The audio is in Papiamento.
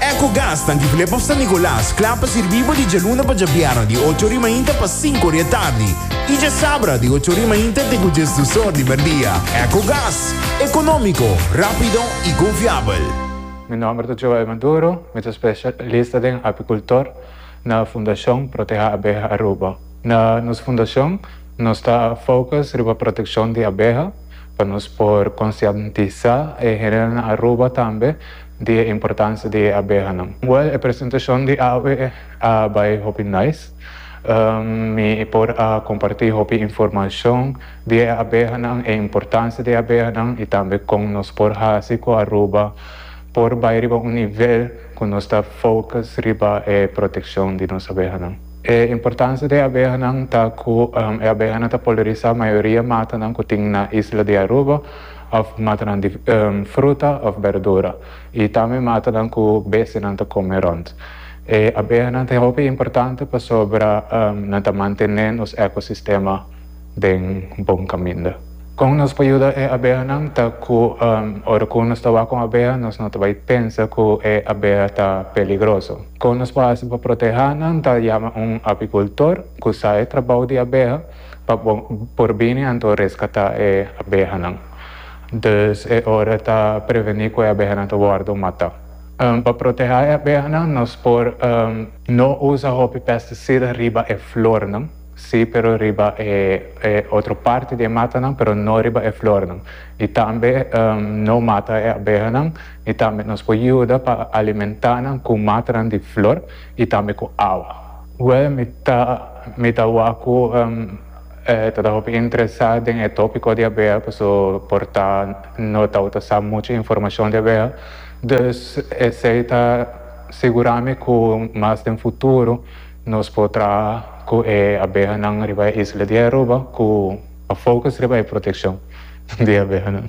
Ecogas ta Antigulé pa San Nicolas, kla pa sirbí bo di djaluna pa djabièrnè di ocho ori mainta pa sinku ori e tardi i djasabra di ocho ori mainta te ku djes dus or di merdia. Ecogas, ekonómiko, rápido i konfiabel. Mi nòmber ta Joel Maduro, mi ta spesialista den apikultor na Fundashon Proteha Abeha Aruba. Na nos fundashon nos ta fokus riba protekshon di abeha pa nos por konsientisá e hende na Aruba tambe di e importancia di e abehanan. Well e presentacion di awe a bay hopi nice. Mi por a comparti hopi informacion di e abehanan, e importancia di e abehanan y tambe con nos por haci cu Aruba por bay riba un nivel cu nos ta focus riba e proteccion di nos abehanan. E importancia di e abehanan ta cu e abehanan ta polariza mayoria matanan cu tin na isla di Aruba. òf matanan di fruta òf berdura i tambe matanan ku bestianan ta kome rònt. E abehanan ta hopi importante pasobra nan ta mantené nos ekosistema den bon kaminda. Kon nos por yuda e abehanan ta ku ora ku nos ta wak un abeha nos no ta bai pensa ku e abeha ta peligroso. Kon nos por hasi pa protehánan ta yama un apikultor ku sa e trabou di abeha. pa bo por bini anto reskatá e abehanan. Dus e ora ta prevení ku e abehanan ta wòrdu matá. Pa protehá e abehanan nos por no usa hopi pesticida riba e flornan, sí pero riba e otro parti di e matanan pero no riba e flornan, i tambe no mata e abehanan, i tambe nos por yuda pa alimentá nan ku matanan di flor. y tambe cu awa. Well mi ta mi ta wak cu e ta ta hopi interesa den e topico di abeha paso por ta no ta ta sa mucha informacion di abeha dus esey ta sigura mi cu mas den futuro nos por traha cu e abehanan riba e isla di Aruba cu ta focus riba e proteccion di abehanan.